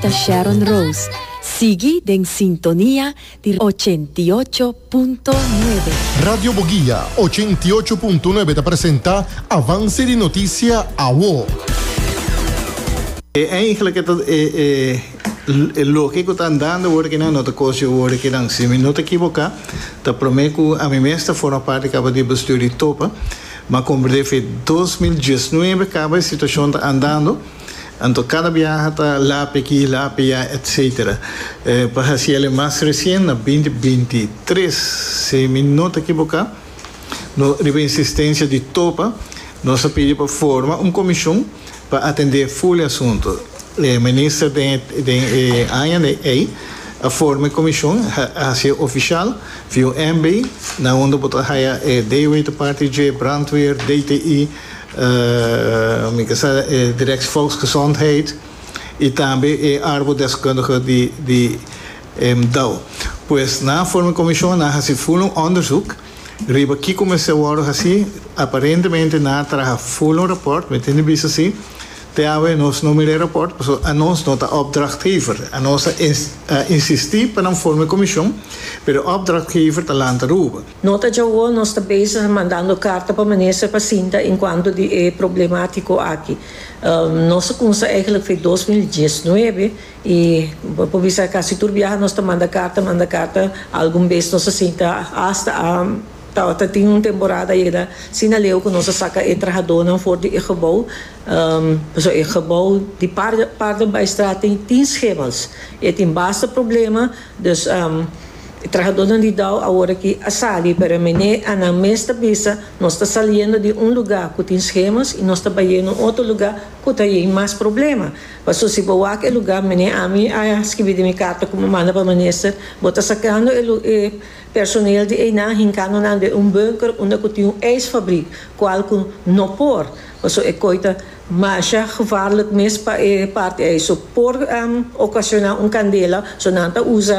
Ta Sharon Rose. Sigui den sintonia di ochenta i ocho punto nuebe. Radio Boguia ochenta i ocho punto nuebe ta presenta Avance di Noticia Awo. E eingele ke ta e e e loke ku ta andando wor ke nan no ta kosio wor ke nan si mi no ta ekiboka ta prome ku ami mes ta forma part di kaba di bestuur di Topa ma komber defi dos mil diesnuebe kaba e situashon ta andando Anto cada biaha ta lape aki, lape ya etc. Pa haci el e mas recien na binti binti i tres, si mi no ta ekiboca, no riba insistencia di Topa, nos a pidi pa forma un comision pa atende full e asunto. E Minister den e aña de ey a forma e comision, a haci e oficial via un MB, na unda bo ta haya e DWT Party, J. Brandweer, DTI, Mi ta sa e Direct Volksgezondheid y tambe e arbodeskundige di Emdau. Pues nan a forma e comision, nan a haci fulun onderzoek riba kico mester wordo haci. Aparentemente nan a traha fulun rapport, mi tin di bisa si. Te awe nos no mira e rapport pasobra anos no ta opdrachtgever. Anos a insisti pa nan forma e comision, pero e opdrachtgever ta lanta ruba. Nota djawo nos ta bezig mandando carta pa minister pa sinta encuanto di e problematico aki. Nos a cumsa eigenlijk fe dos mil diesnuebe y bo por bisa casi tur biaha nos ta manda carta manda carta algun bes nos a sinta hasta a ta tin un temporada ayera sina leu cu nos a saca e trahadonan for di e gebouw pasobra e gebouw di par parten pa e straat tin schemels y tin basta problema Dus e trahadónan di Dow awor aki a sali, pero mené Annan mes ta bisa, Nos ta saliendo di un lugá ku tin schemas i nos ta bayendo un otro lugá ku ta yei mas problema. Paso si bo wak e lugá, mené ami a skibi den mi karta ku mi manda pa minister, bo ta sakando e lu e personeel di einan hinkando nan den un bunker unda ku tin un ijsfabrik, kual ku no por, paso e koi ta. Masha gevaarlijk mes pa e parti ei so por ocasioná un candela, so nan ta usa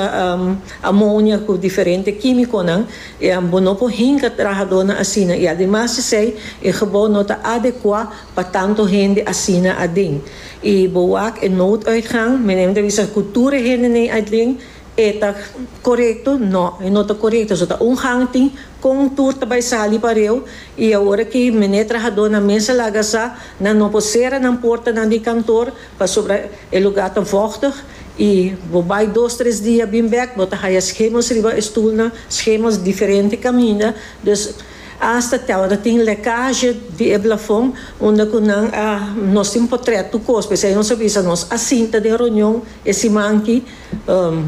amonia cu diferente quimiconan y bo no por hinca trahadornan asina y ademas d'esey e gebouw no ta adecuá pa tanto hende asina aden y bo wak e nooduitgang, meneer mi ta bisa cu tur e hende n'e aden. E ta korekto? No, e no ta korekto. So ta un hangting kon tur ta bai sali pareu i awor ki mene trahadónan mes a laga sa nan no por sera nan portanan di kantor pasobra e lugá ta vògtig i bo bai dos tres dia bin bèk bo ta haya schemos riba e stulnan, schemos diferente kaminda. Dus asta te awor ta tin lèkazhe di e blafon unda ku nan a nos tin potrèt tukos p'esei nos a bisa nos a sinta den ronion e siman ki.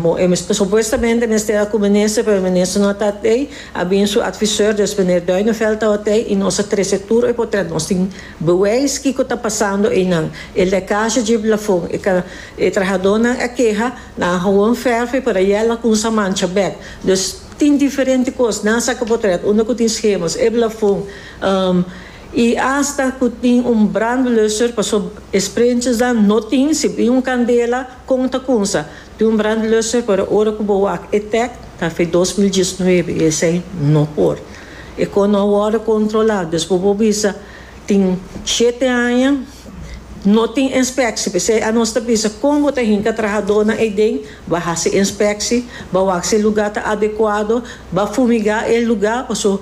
Bo e supuestamente mester a cu minister pero minister no a ta tei a bin su advisor dus meneer Duinevelt tawa tei y nos a trece tur e potrero nos tin bewijs kico ta pasando eynan e lecaje dje blafon e ka e trahadonan a keha nan hawon verf e para yel a cunsa mancha bek dus tin diferente cos nan sa cu potrero unda cu tin schemas e blafon y hasta cu tin un brandblusser pasobra e sprinchers dan no tin si bin un candela. Kon ta kunsa tin un brandblusser pero ora ku bo wak e tèk ta fe dos mil diesnuebe esei no por. E kos no a wòrdu kontrolá dus bo por bisa tin shete aña no tin enspekshi p'esei anos ta bisa kon bo ta hinka trahadónan ei den ba hasi enspekshi, ba wak si e lugá ta adekuado, ba fumigá e lugá paso